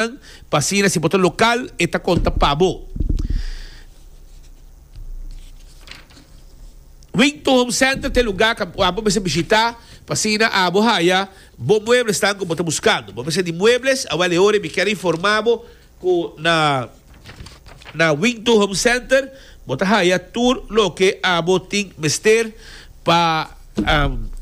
Nan pa asina si bo ta lokal e ta konta pa bo. Wington Home Center ta e lugá ku abo mester bishitá pa asina abo haya bo mueblenan ku bo ta buskando. Bo mester di muebles? Awèl e ora mi kier informá bo ku na. Na Wington Home Center bo ta haya tur loke abo tin mester pa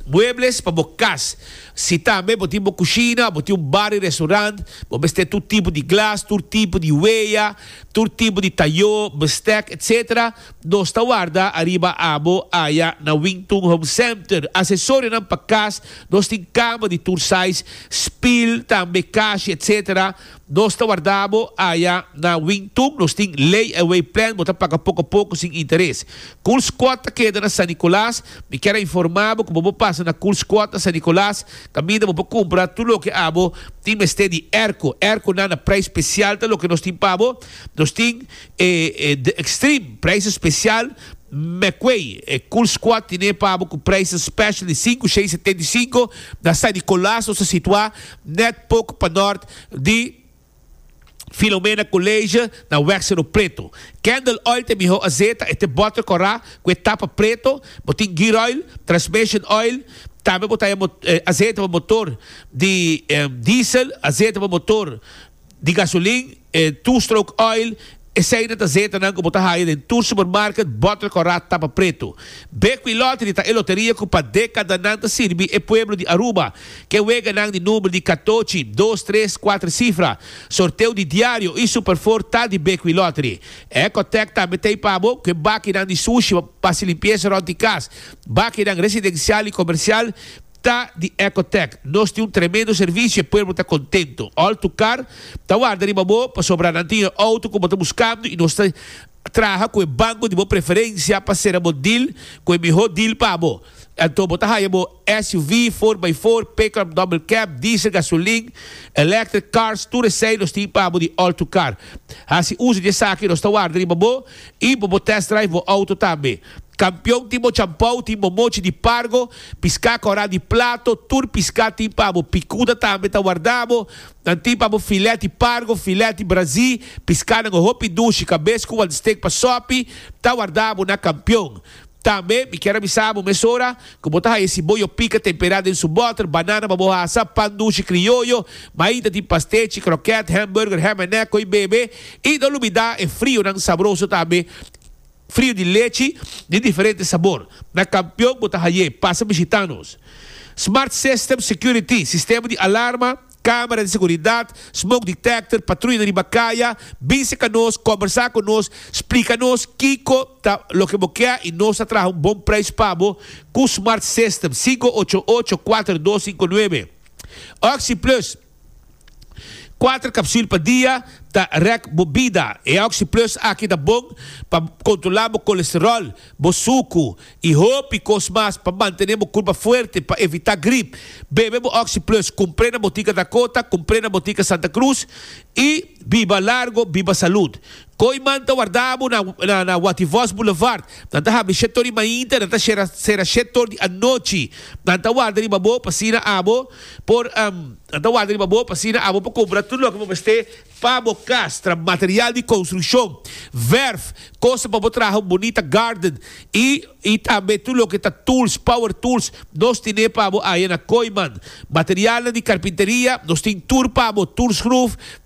muebles pa bo cas. Si tambe bo tin bo cushina o bo tin un bar di restaurant, bo mester tur tipo di glas, tur tipo di wea, tur tipo di tayo, bestek, etc. Nos ta warda ariba abo aya na Wington Home Center. Accesorionan pa cas, nos tin cama di tur size, spil, tambe kashi, etc. Nos ta warda bo aya na Wing Tun. Nos tin lay away plan, bo ta paga poko poko sin interes. Cool Squad ta keda na San Nicolas. Mi kier a informa bo cu bo por pasa na Cool Squad na San Nicolas caminda bo por cumpra tur loke abo tin mester di airco. Airco nan na prijs special ta loke nos tin pa bo. Nos tin e The Extreme, prijsen special. Mecway, e Cool Squad tine pa bo cu prijsen special di cinco, seis, setenta y cinco. Na San Nicolas nos ta situa Net poko pa nort di Filomena College na Wèg Sero Preto. Candle Oil ta mihó azeta, e ta bòter kòrá ku e tapa preto. Bo tin gear oil, transmission oil, tambe bo ta haya azeta pa motor di diesel, azeta pa motor di gasolin, e two-stroke oil, eseinan ta zeetanan ku bo ta haya den tur supermarket bòter kòrá tapa pretu. Bekwí Lottery ta e loteria ku pa dekadanan ta sirbi e pueblo di Aruba. Ke weganan di number di katochi, dos, tres, kuater sifra. Sorteo di diario i Super Four ta di Bekwí Lottery. Ecotech tambe t'ei pa bo, ku e bakinan di sushi pa hasi limpiesa rònt di kas, bakinan residensial i komersial, Ta di Ecotec. Nos tin un tremendo servicio, e pueblo ta contento. All to car ta warda riba bo, pasobra nan tin e auto cu bo ta buscando y nos ta traha cu e banco di bo preferencia pa cera bo deal cu e mihor deal pa bo. Anto bo ta haya bo SUV, four by four, pickup, double cab, diesel, gasolin, electric cars, tur esey nos tin pa bo di All to Car. Haci uzo di esaki nos ta warda riba bo y bo por test drive bo auto tambe. Kampion tin bo champou, tin bo mochi di pargo, piská kòrá di plato, tur piská tin pa bo, pikuda tambe ta wardá bo, nan tin pa bo filèt di pargo, filèt di brazí, piskánan ku hopi dushi, kabes ku wantstake pa sòpi, ta wardá bo na kampion. Tambe mi kier a bisa bo mesora ku bo ta haña siboyo pika temperá den su bòter, banana pa bo hasa, pan dushi krioyo, maita tin pastechi, krokèt, hèmburger, hèm en nèk, koi bebe, i no lubidá e frionan sabroso tambe. Frio di lechi di diferente sabor na kampion bo ta haye, pasa bishita nos. Smart System Security, sistema di alarma, kamera di seguridat, smoke detector, patruyanan riba kaya, bin seka nos, kombersa ku nos, splika nos kiko ta loke bo ke i nos ta traha un bon preis pa bo ku Smart System, sinku ocho ocho kuater dos sinku nuebe. Oxi Plus. Kuater kapsul pa dia ta rèk bo bida. E Oxy Plus aki ta bon pa kontrolá bo kolesteròl, bo suku i hopi kos mas pa mantené bo kurpa fuerte pa evitá grip. Bebe bo Oxy Plus kumpré na Botika Dakota, kumpré na Botika Santa Cruz i biba largo, biba salud. Kooiman ta warda bo na Wativos Boulevard. Nan ta habri shet tor di mainta nan ta sera shet tor di anochi. Nan ta warda riba bo pa asina abo por nan ta warda riba bo pa asina abo por kumpra tur loke bo mester pa bo kas, tra material di konstrukshon, verf, kos pa bo traha un bunita garden i tambe tur loke ta tools, power tools, nos tine pa bo aya na Kooiman. Materialnan di karpinteria nos tin tur pa bo, tur skruf,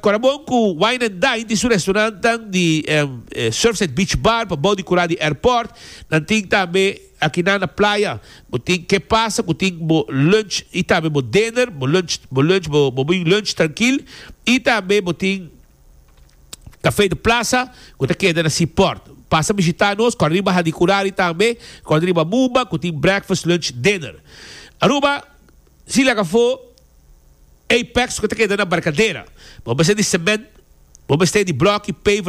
Corabon cu Wine and Dine tin su restaurantnan di Surfside Beach Bar pabao di cura di airport. Nan tin tambe aki na na playa. Bo tin ke pasa cu tin bo lunch y tambe bo dinner. Bo lunch bo lunch bo bo bin lunch trankil y tambe bo tin Cafe de Plaza cu ta keda na Sea Port. Pasa bishita nos cor riba Hadicurari tambe, cor riba Amuba cu tin breakfast, lunch, dinner. Aruba. Si laga afó Apex ku ta keda na Barkadera, bo mester di sement, bo mester di blòk i paver.